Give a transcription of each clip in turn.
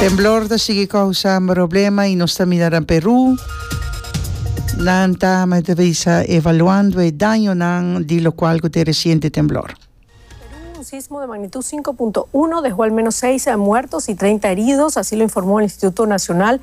Temblor ta sigui kousa moroblema i nos ta mira na Peru. Nan ta mesa evaluando e dañonan di lokual ku tin resiente temblor. Perú, un sismo de magnitud sinku punto uno dejó al menos seis muertos y treinta heridos, así lo informó el Instituto Nacional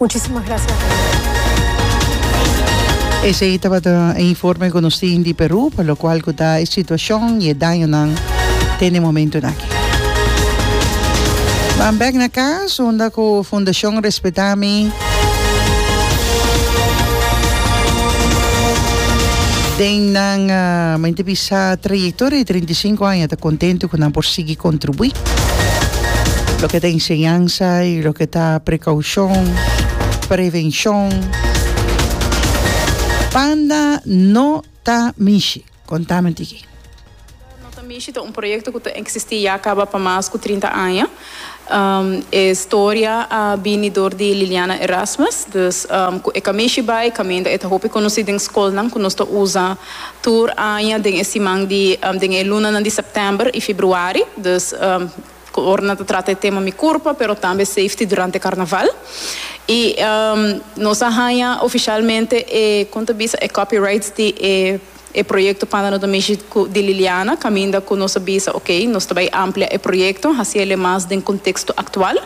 Muchísimas gracias. Esei tabata e informe cu nos tin di Peru pa locual cu ta e situacion y e dañonan den e momentonan aki. Ban bek na cas unda cu Fundacion Respeta Mi den nan mente bisa trayectoria di treinta i sinku aña ta contento cu nan por sigui Contribui. Loke ta enseñansa y loke ta precaucion, prevencion, banda no ta mishi. Contame tiki. Banda no ta mishi ta un proyecto cu ta existi ya caba pa mas cu trinta aña. E storia a bini door di Liliana Erasmus. Dus cu e camishi bay caminda e ta hopi conoci den scolnan cu nos ta usa. Tur aña den e siman di den e lunanan di sèptèmber i fibruari, dus ora nan ta trata e tema Mi Curpa pero tambe Safety durante e Karnaval. I nos a haña ofishalmente e kon ta bisa e copyrights di e e proyekto Panda Noto Mishi ku di Liliana kaminda ku nos a bisa ok nos ta bai amplia e proyekto hasi el e mas den konteksto aktual.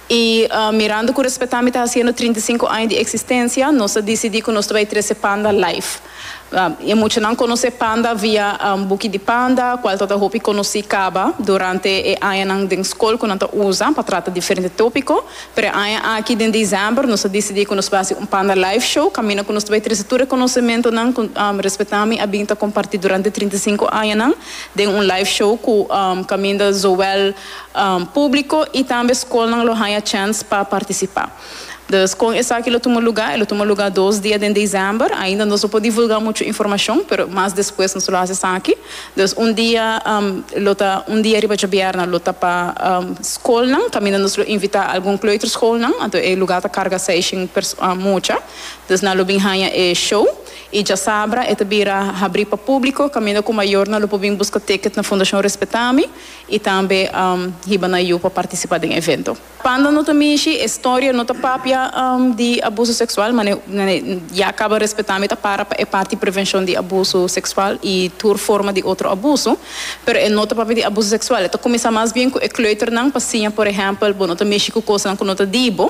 I mirando ku Respetá mi ta hasiendo trinta i sinku aña di eksistensia nos a disidí ku nos ta bai trese Panda live. E muchanan konosé Panda via un buki di Panda, kual ta ta hopi konosí kaba durante e añanan den skol ku nan ta usa pa trata diferente tópiko. Pero e aña aki den desèmber nos a disidí ku nos bai hasi un Panda Live Show, kaminda ku nos ta bai trese tur e konosementonan ku Respetami a bin ta kompartí durante trinta i sinku añanan den un live show ku kaminda zowel públiko i tambe skolnan lo haña chèns pa partisipá. Dus, kon esaki lo tuma lugá? E lo tuma lugá dos dia den desèmber. Ainda nos no por divulgá muchu informashon, pero mas despues nos lo hasi esaki. Dus, un dia, lo ta un dia riba djabièrna, lo ta pa skolnan, kaminda nos lo invitá algun kleuterschoolnan. Anto e lugá ta karga seishen mucha. Dus, nan lo bin haña e show. I djasabra e ta bira habrí pa públiko, kaminda ku mayornan lo por bin buska tèkèt na Fundashon Respetá mi i tambe hiba na yu pa partisipá den evento. Panda no ta mishi e storia no ta papia di abuso seksual mane ya kaba respetá mi ta para pa e parti prevenshon di abuso seksual i tur forma di otro abuso pero e no ta papia di abuso seksual e ta kuminsá mas bien ku e kleuternan pa siña por ehèmpel bo no ta mishi ku kosanan ku no ta di bo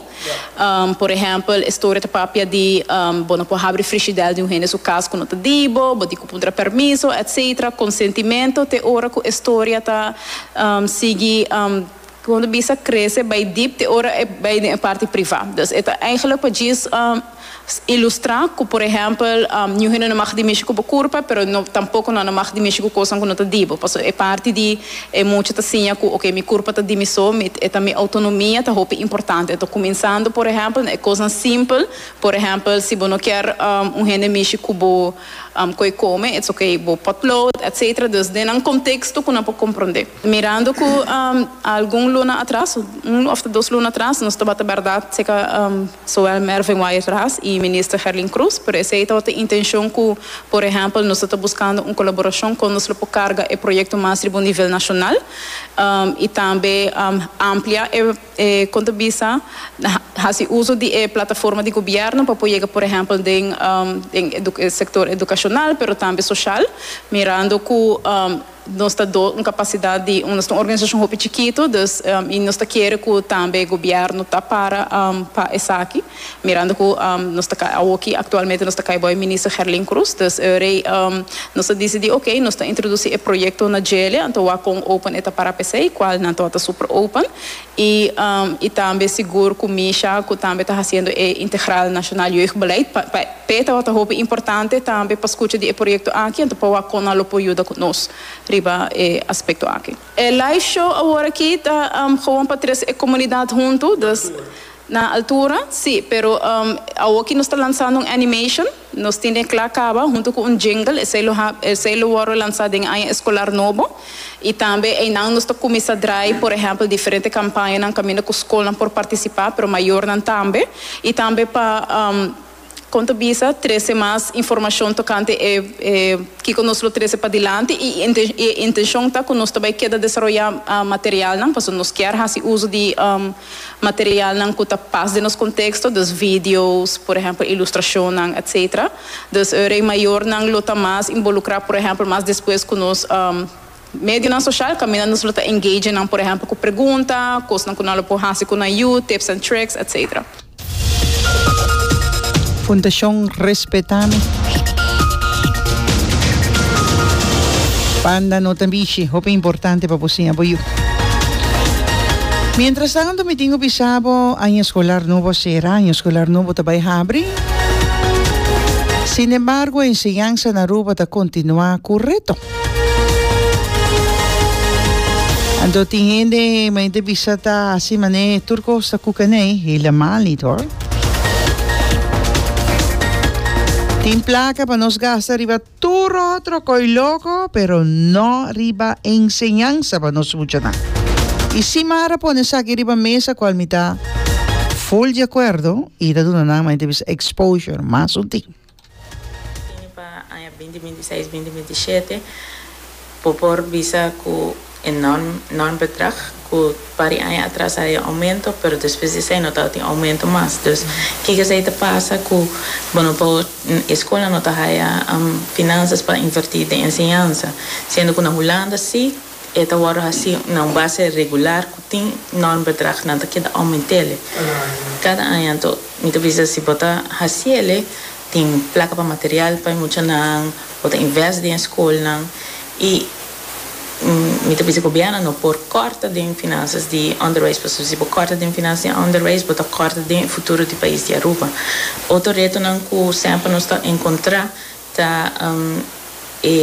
por ehèmpel e storia ta papia di bo no por habri frishidèl di un hende su kas ku no ta di bo bo di ku puntra permiso etcetera konsentimentu te ora ku e storia ta sigui. Kondo bisa krese bai dip te ora e bai den e parti privá. Dus e ta eigenlik pa djis ilustrá ku por ehèmpel ñu hende no mag di mishi ku bo kurpa, pero no tampoko nan no mag di mishi ku kosnan ku no ta di bo. Pasobra e parti di e mucha ta siña ku oke, mi kurpa ta di mi so, mi e ta mi outonomia ta hopi importante. Enton kuminsando por ehèmpel na e kosnan simpel, por ehèmpel si bo no kier un hende mishi ku bo koe kome, it's ok, bo potlood, etcetera. Dus den nan konteksto ku nan por komprondé. Mirando cu algun luna atras, un of ta dos luna atras, nos tabata berda ceca Zoel Mervin Wyatt Ras y Minister Gerlin Croes, pero esey tabata intencion cu, por ehempel, nos tabata buscando un colaboracion con nos lo por carga e proyecto mas riba un nivel nacional y tambe amplia e, con ta bisa, haci uzo di e plataforma di gobierno pa por yega, por ehempel, den e sector educacional pero tambe social, mirando cu. Nos ta do un kapasidat di nos ta un organisacion hopi chikitu dus y nos ta kere ku tambe gobièrnu ta para pa esaki mirando ku nos ta kai awoki aktualmente nos ta kai bai Minister Gerlin Cruz dus rei nos a disidí ok nos ta introdusí e proyekto na Djele anto wak kon open e ta para p'esei kual nan tabata super open. I i tambe sigur ku Misha ku tambe ta hasiendo e integral nashonal jeugdbeleid pa p'e e tabata hopi importante tambe pa skucha di e proyekto aki anto pa wak kon nan lo por yuda ku nos riba e aspekto aki. E live show awor aki ta gewoon pa tres e komunidat huntu, dus. Na altura, sí, pero awor ki nos ta lansando un animation, nos tin den cla caba hunto cu un jingle, esey lo hab, esey lo wordo lansa den aña escolar nobo, y tambe eynan nos ta cuminsa draai, por ehempel, diferente campañanan caminda cu scolnan por participa, pero mayornan tambe, y tambe pa. Kon ta bisa trese mas informashon tokante e kiko nos lo trese padilanti i e intenshon ta ku nos ta bai keda desaroyá materialnan, pasobra nos kier hasi uso di materialnan ku ta pas den nos konteksto, dus video's, por ehèmpel ilustrashonnan, etsetera. Dus e rei mayornan lo ta mas involukrá, por ehèmpel mas despues ku nos. Medionan social kaminda nos lo ta engage nan por ehempel ku pregunta, kosnan ku nan lo por hasi ku nan yu, tips and tricks, etc. Fundashon Respetá mi. Banda no ta bishi, hopi importante pa bo siña bo yu. Mientrastantu mi tin ku bisa bo aña eskolar nobo a sera, aña eskolar nobo ta bai habri. Sinembargo enseñansa na Aruba ta kontinuá ku reto. Anto tin hende mai te bisa ta hasi mané tur kos ta kuka nei helemal nit hoor. Tin plaka pa nos gasta riba tur otro koi loko pero no riba enseñansa pa nos muchanan. I si mara pone esaki riba mesa kual mi ta full di akuerdo i ta duna nan main te bisa exposure mas un tin. Ini pa aña binti binti seis, binti binti shete bo por bisa ku e norm norm bedrag ku par e aña atras a haña oumento pero despues di esei no tabata tin oumento mas dus kiko esei ta pasa ku bo no por e skolnan no ta haña finansas pa inverti den enseñansa siendo ku na Hulanda si E ta wòrdu hasí na un base regular ku tin nòrm bedrag nan ta keda oument'el kada aña. Anto mi ta bisa si bo ta hasi'el tin plaka pa material pa e muchanan, bo ta invèst den e skolnan i mi ta bisa gobièrnu no por kòrta den finansas di onderwijs pasobra si bo kòrta den finansas di onderwijs bo ta kòrta den e futuro di pais di Aruba. Otro retonan ku semper nos ta enkontrá. Ta e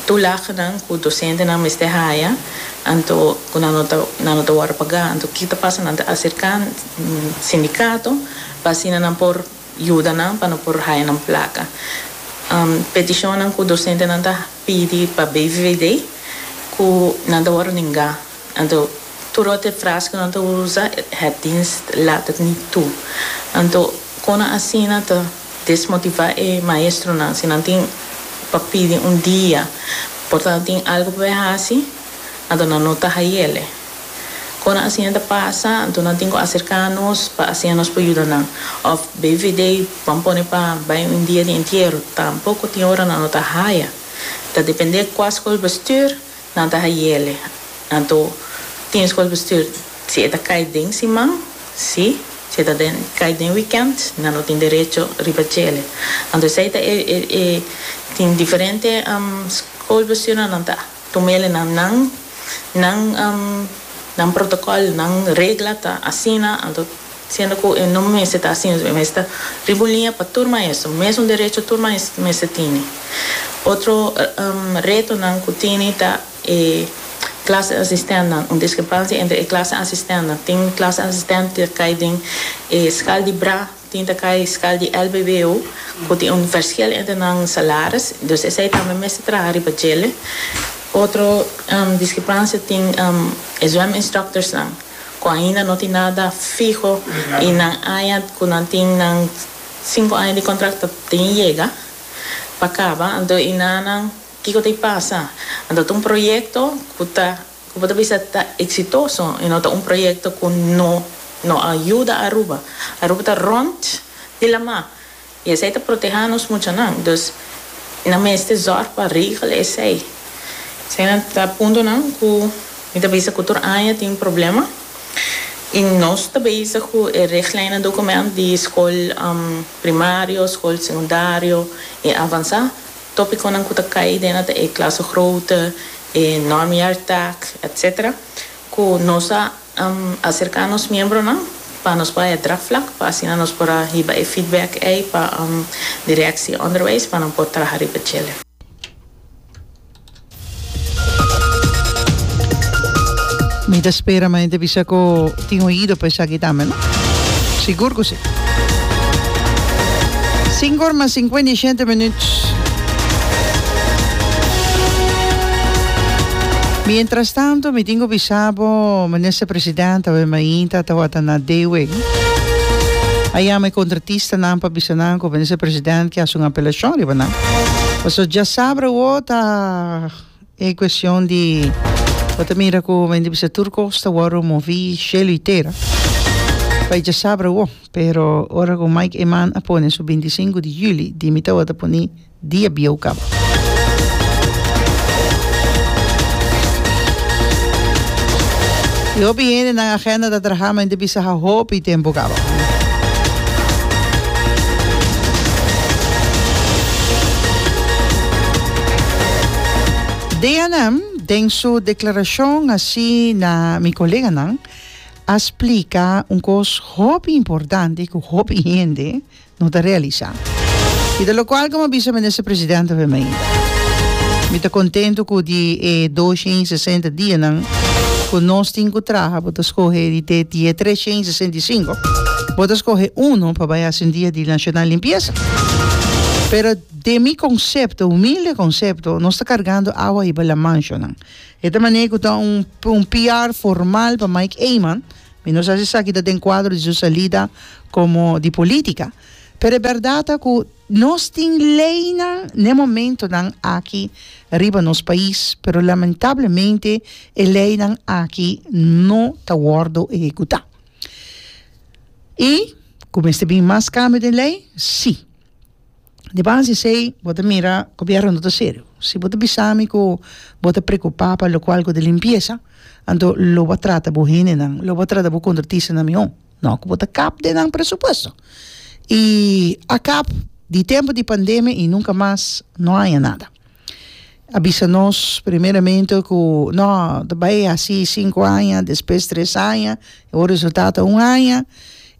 tulagnan ku dosentenan mester haya anto ku nan no ta nan no ta wòrdu pagá? Anto ki ta pasa? Nan ta aserká sindikato pa asina nan por yuda nan pa no por haya nan plaka. Petishonnan ku dosentenan ta pidi pa BVVD ku nan ta wòrdu nengá. Anto tur ot e fras ku nan ta usa, het dienst laat het niet toe. Anto kon asina ta. Desmotivá e maestronan si nan tin pa pidi un dia por ta tin algu pa bai hasi, anto nan no ta hayele. Kona asi nan ta pasa, anto nan tin ku aserká nos pa asin nos por yuda nan. Òf bai vedei ban pone pa bai un dia di entiero, tampoko tin ora nan no ta haya. Ta dependé kua skol bestuur Nan ta hayele. Anto tin skolbestuur, si e ta kai den siman, si. Si e ta den kai den wikènt, nan no tin derecho riba chele. Anto esei ta e e tin diferente skolbestuurnan nan ta tuma ele na nan nan nan protokòl, nan regla ta asina. Anto Siendo cu e no mester ta asina, e mester riba un liña pa tur maestro, mesun derecho tur maestro mester tene. Otro retonan cu tene ta e clase asistentnan, un discrepancia entre e clase asistentnan. Tin clase asistent di ta cay den e scal di bra, tin ta cay scal di lbbo, cu tin un verschil entre nan salaris, dus esey tambe mester traha riba djele. Otro discrepancia tin e zwem instructorsnan. cu ainda no tin nada fiho y nan aña cu nan tin nan cinco aña di contract ta tin yega pa caba anto y na nan kico ta y pasa anto ta un proyecto cu ta cu bo ta bisa ta exitoso y no ta un proyecto cu no no a yuda Aruba Aruba ta rond di lama. I esei ta protehá nos muchanan. Dus nan mester zòrg pa regla esei. Esei nan ta puntonan ku mi ta bisa ku tur aña tin problema. I nos ta bezig ku e regleinnan dokumènt di skol primario, skol sekundario i avansá. Tópikonan ku ta kai den ata e klasegroote, e normjaartak, etsetera, ku nos a. Acerca nos miembronan pa nos bay e draagvlak pa asina nos por a hiba e feedback ey pa Directie Onderwijs pa nan por traha riba djele. Mi ta spera ma hende bisa cu tin oido pa esaki tambe, no? Sigur cu si. Cinco or mas cincuenta y shete minuut. Mientras tanto mi tin cu bisa bo Minister President awe mainta tawata na Dewey a yama e contratistanan pa bisa nan cu Minister President ke haci un apelacion riba nan pasobra dja sabra awo ta e cuestion di bo ta mira cu men di bisa tur cos ta wordo movi cielo y tera pa e dja sabra awo pero ora cu Mike Eman a pone su binti cinco di juli di mi tawata poni di e bieukamp. E hopi hende nan agenda ta traha mente bisa ha hopi tempo kaba. DNM den su declaracion haci na mi coleganan a splica un cos hopi importante cu hopi hende no ta realisá. I ta locual como a bisa Minister Presidente Wim Heinda. Mi ta contento cu di e dos shen i sesenta dianan cu nos tin cu traha bo ta scoge di te die tres shen i sesenta i cinco bo ta scoge uno pa bay haci un dia di nacional limpieza. Pero den mi concepto, humilde concepto, nos ta cargando awa hiba la manchonan. E ta manera cu ta un PR formal pa Mike Eman. Mi no sa si esaki ta den kuadro di su salida komo di polítika, pero e bèrdat ta ku nos tin leinan na e momentunan aki riba nos pais, pero lamentablemente e leinan aki no ta wòrdu ehekutá. I ku mester bin mas kambio den lei? Sí. Di base di esei bo ta mira gobierno no ta serio si bo ta bisa mi ku bo ta preocupa pa locual ku di limpieza anto lo bo a trata bo hendenan lo bo a trata bo contratistanan mihor no ku bo ta kap den nan presupuesto y a kap di tempo di pandemia y nunca mas no haya nada a bisa nos primeramente ku no ta bay hasi cinco aña despues tres aña y bo resultado ta un aña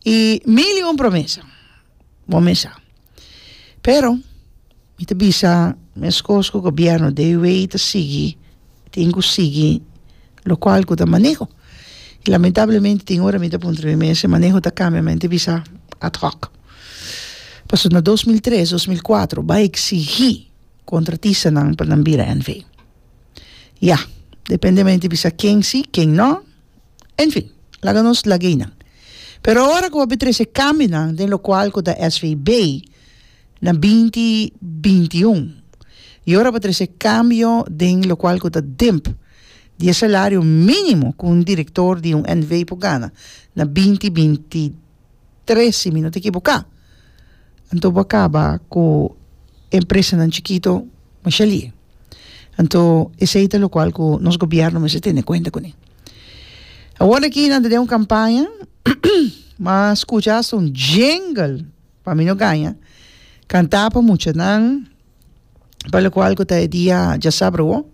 y mil y un promesa. Bo me sa. Pero, mi ta bisa mescos cu gobierno de wey ta sigui, tin cu sigui locual cu ta maneho. Y lamentablemente tin ora mi ta puntra mi mes, e maneho ta cambia, mi ta bisa ad hoc. Pasobra na dos mil tres, dos mil cuatro bay exigi contratistanan pa nan bira NV. Ya, depende mi ta bisa ken si, ken no. En fin, laga nos laga ei nan. Pero ora ku bo a bin trese kambinan den lokual ku ta SVB na binti binti i un i ora bo a trese kambio den lokual ku ta dimp di e salario minimo ku un direktor di un NV por gana na binti binti tres si mi no ta ekiboká anto bo a kaba ku e empresanan chikito masha li'e anto esei ta lokual ku nos gobièrnu mester tene kuenta kuné awor aki nan ta den un kampaña m'a skucha asta un djengel pa mi no gaña kantá pa muchanan. Palokual ku ta e dia djasabrowo,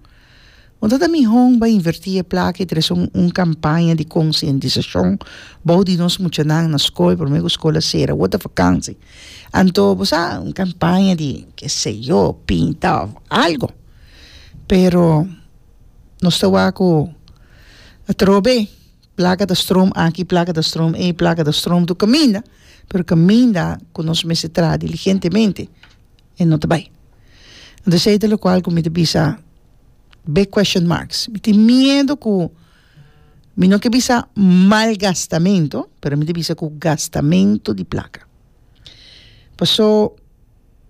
bo no ta mihon bai invertí e plaka i trese un kampaña di konsientisashon bou di nos muchanan na skol promé ku skol a sera? Wòrdu ta fakansi anto bo sa un kampaña di ke se yo pinta òf algu pero nos ta wak ku atrobe plaka ta strom aki plaka ta strom ei plaka ta strom tur kaminda pero kaminda ku nos mester traha diligentemente. e no ta bai. Entonces ey ta locual cu mi ta bisa big question marks. Mi tin miedo cu, mi no ke bisa malgastamento, pero mi ta bisa cu gastamento di placa. Paso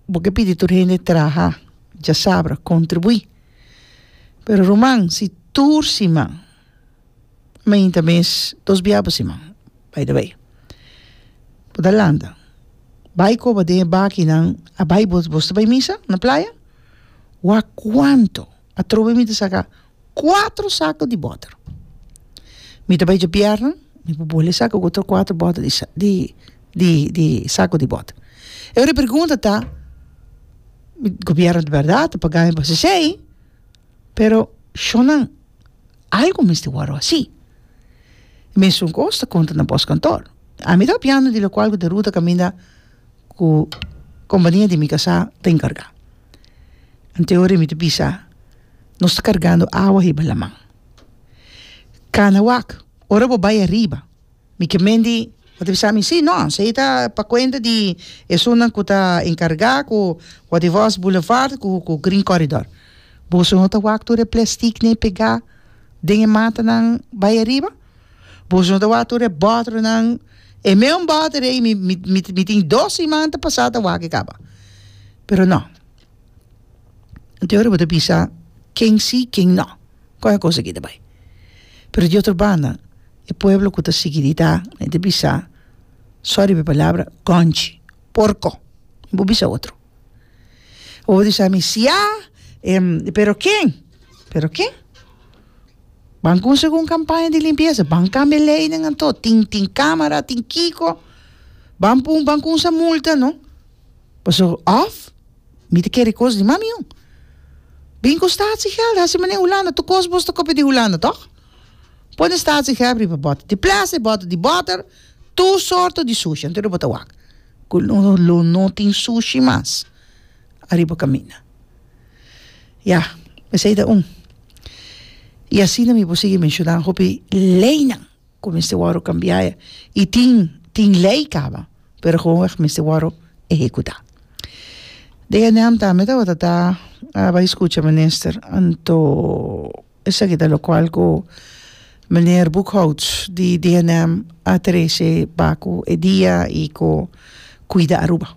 bo ke pidi tur hende traha, djasabra, contribui, pero ruman si tur siman, Mainta mes dos bia pa siman by the way bo ta lanta bay coba den e bakinan a bay bos bos ta bay misa na playa wak cuanto atrobe mi ta saca cuatro saco di boter mi ta bay djapièrna mi por bole saca otro cuatro boter di sa di di di saco di boter e ora e pregunta ta mi gobierno di berdad ta paga mi pa haci esey pero shon nan. Algu mester wòrdu hasi. Mesun ku os ta konta na bòs kantor. Ami ta hopiando di lokual ku Deruta kaminda ku kompania di mi kasá ta enkargá. Anteora mi ta bisa, nos ta kargando awa hiba laman. Kana wak, ora bo bai ariba Mi ke Mendy a bisa mi, sí, nos, ei ta pa kuenta di esunnan ku ta enkargá ku Waterwaas Boulevard ku ku Green Corridor. Boso no ta wak tur e plèstik ni e pegá den e matanan bai ariba? Boso no ta wak tur e bòtoronan? E meun bòtoro ei mi mi mi tin dos siman ta pasá ta wak e kaba. Pero no. Te ora bo ta bisa ken si ken no con e cosa aki ta bay pero di otro banda e pueblo cu ta sigui di ta e ta bisa sorry pa e palabra conchi porco bo bisa otro o bo bisa mi sia pero ken pero ken ban cume si cu un campaña di limpieza ban cambia e leynan anto tin tin camara tin kico ban pun ban cuminsa multa no Paso of mi ta kere cos di mami un. Bin cu statiegeld hasi manera Hulanda tur cos bos ta copia di Hulanda toch? Pone statiegeld riba bottle di plastic, bottle di butter, tur sorto di sushi anto lo bo ta wak cu lo no tin sushi mas ariba caminda. Ya esey ta un y asina mi por sigui menciona hopi leynan. Cu mester worde cambia e. Y tin, tin ley caba, pero gewoonweg mester worde ehecuta. Den e neamta mi tabata ta bai scucha minister, anto esaki ta locual cu meneer Boekhoudt di DNM a trece ba cu e dia y cu cuida Aruba.